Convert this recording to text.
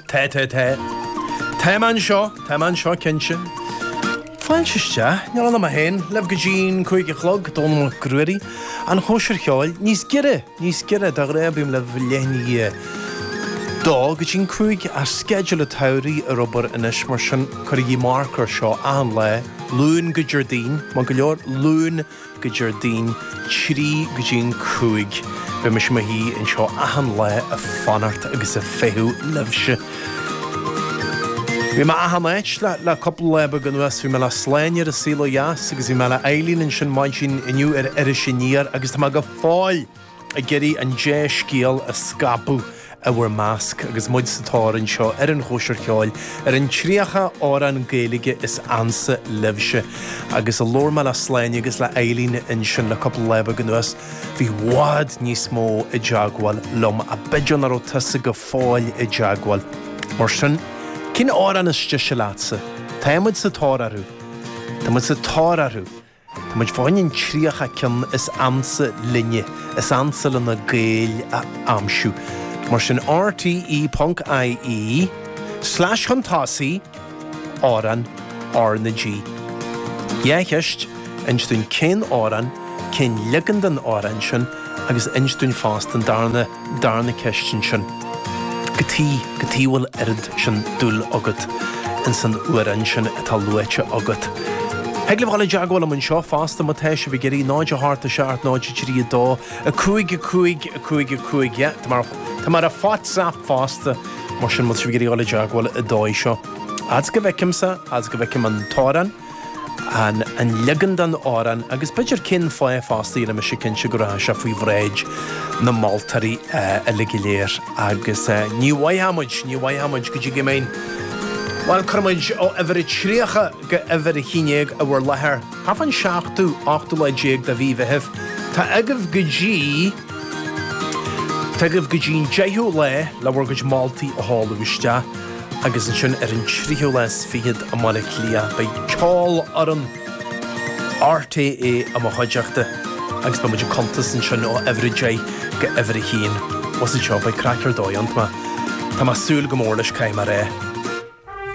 Te te te. Tá mé anseo, tá mé anseo, cinnte. Fáilte isteach, níl ann ach mé fhéin libh go dtí'n cúig a chlog, Dónal Mac Ruairí, An Chóisir Cheoil, níos giorra, níos giorra, de ghnáth bím libh leath i ndiaidh dó go dtí'n cúig ach sceideal an tsamhraidh ar obair anois, mar sin cuirigí marc air seo, achan lá, Luan go Déardaoin, maith go leor, Luan, go Déardaoin 3 go dtí an 5 beidh mise i mo shuí anseo achan lá a' fanacht agus a' feitheamh libhse. Bhí mé achan áit le, le cúpla lá beag anuas, bhí mé le Sláine ar an Saol Ó Dheas agus bhí mé le Eileen ansin maidin inniu ar Iris Aniar agus tá mé go fóill! ag iarraidh an dea-scéal a scaipeadh i bhur measc agus muid sa tóir anseo ar an Chóisir Cheoil ar an 30 amhrán Gaeilge is ansa libhse agus ó labhair mé le Sláine agus le Eileen ansin le cúpla lá beag anuas bhí bhfad níos mó i dteagmháil liom ach b'fhéidir nach raibh tusa go fóill i dteagmháil mar sin cén amhrán is deise leatsa? Tá muid sa tóir orthu! Tá muid sa tóir orthu! Tá muid fáin an 30 ceann is ansa linne is ansa le na Gaeil a aimsiú. Mar sin RTÉ.ie slash chun tosaigh Amhrán RnaG Dhá cheist, Inis dúinn cén amhrán, cén leagan den amhrán sin agus inis dúinn fosta an darna. Darna ceist ansin. Cad chuige, cad chuige bhfuil oiread sin dúil agat ins an amhrán sin atá luaite agat. Thig libh dul i dteagmháil liom anseo fosta má tá sibh ag iarraidh, 0 8 7 0 3 2 5 5 5 5 yeah tá mé ar, tá mé ar an WhatsApp fosta mar sin má tá sibh ag iarraidh dul i dteagmháil an dóigh seo. Fhad 's go bhfeicimse, fhad 's go bhfeicim an t-amhrán, an leagan den amhrán agus b'fhéidir cén fáth fosta, déanfaidh mise cinnte go rachaidh sé faoi bhráid na moltóirí uilig go léir agus ní bhfaigheadh muid, ní bhfaigheadh muid go dtí go mbeinn, bhuel, cuirfidh muid ó uimhir a tríocha go uimhir a haon déag i bhur láthair. Thart fán seachtú, ochtú lá déag de mhí Mheithimh, tá agaibh go dtí, tá agaibh go dtí an deichiú lá le bhur gcuid moltaí a sheoladh isteach. Agus ansin ar an tríú lá is fichead i mBaile Átha Cliath beidh Ceolfhoireann RTÉ i mo chuideachta agus beidh muid ag cuntas ansin ó uimhir a deich go uimhir a haon. Bhuel, is anseo a bheidh craic ar dóigh ann. Tá mé, tá mé ag súil go mór leis, caithfidh mé a rá.